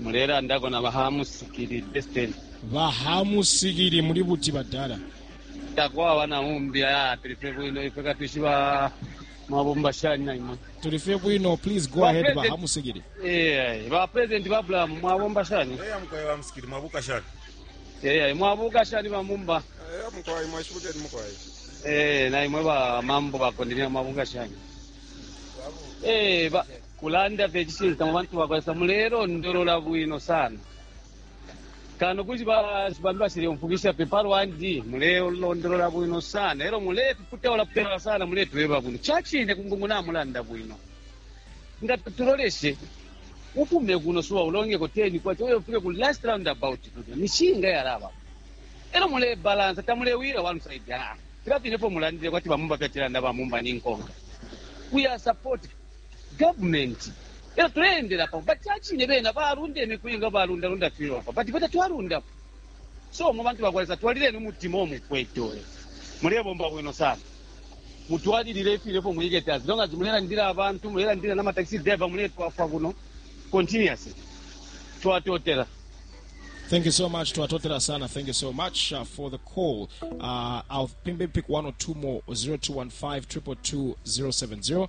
mulelandako na bahamusikili destiny bahamusikili muli buti badala takwaba na umbi aya tuli fye bwino ife katwishiba mabumba shani na imwe tuli fye bwino please go ahead Bapresident. bahamusikili Eh, ba president ba bulamu mwabomba shani eya mukwai wa musikili mwabuka shani Eh, mwabuka shani bamumba eya mukwai mwashibukeni mukwai Eh, na imwe ba mambo bakondenia mwabuka shani Eh, ba- Kulanda fye icishinka mwe bantu bakwa Lesa mulelondolola bwino sana kano kuti bambi basileumfwikisha fye palwandi. Mulelondolola bwino sana elyo mulepiputaula putaula sana muletweba bwino. Cacine kungungu namulanda bwino. Nga tuloleshe, ufume kuno suba ulongeko K10 elyo ufike ku last roundabout kulya nishinga yalabapo. Elyo mulebalansa tamulewila one side, filya fine ifyo mulandile kwati ba Mumba fyacilanda ba Mumba ninkonka. We are supporting. government elo tuleendela pamo but chachine bena balunda imiku inga balunda lunda funeral pa but fwe tatwalundapo so mwe bantu bakwa Lesa twalileni umutima uo mukwete uyo mulebomba bwino sana mutwalilile ifine fyo mwikete as long as mulelandila abantu mulelandila nama taxi driver muletwafwa kuno continuously twatotela. Thank you so much to Atotela Sana. Thank you so much uh, for the call. Uh, I'll maybe pick one or two more 0215 222 070.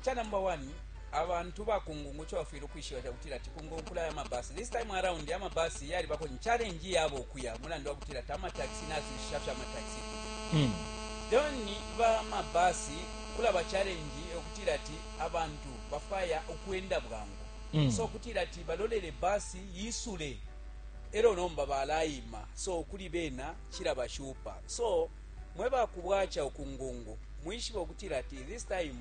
Cha number 1 abantu ba kungungu icho bafwile ukwishiba chakutila ati kungungu kulaya ama bus this time around ama bus yalibako ni challenge yabo ukuya mulandu wakutila ati ama taxi nazwishisha fye ama taxi mm. then ba ama bus kulaba challenge okutila ati abantu bafaya ukwenda bwangu mm. so okutila ati balolele bus yisule elo nomba balayima so kuli bena chilabashupa so mwe ba ku bwaca uku ngungu, mwishibe ukutila ati this time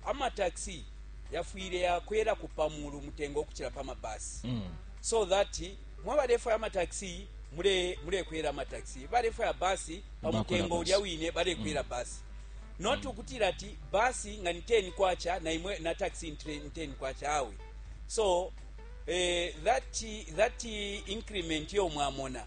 ama taxi yafwile ya kwelako pa mulu umutengo ukucila pa ma bus mm. so that mwe balefwaya ama taxi mule mulekwela ama taxi balefwaya bus pa mutengo ulya wine balekwela mm. bus not mm. ukutila ati bus nga ni 10 kwacha na imwe na taxi ni 10 kwacha awe so eh, that that increment yo mwamona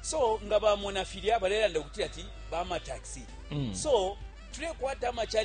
so nga bamona filya balelanda ukutila ati bamataxi so tulekwata ama challenge.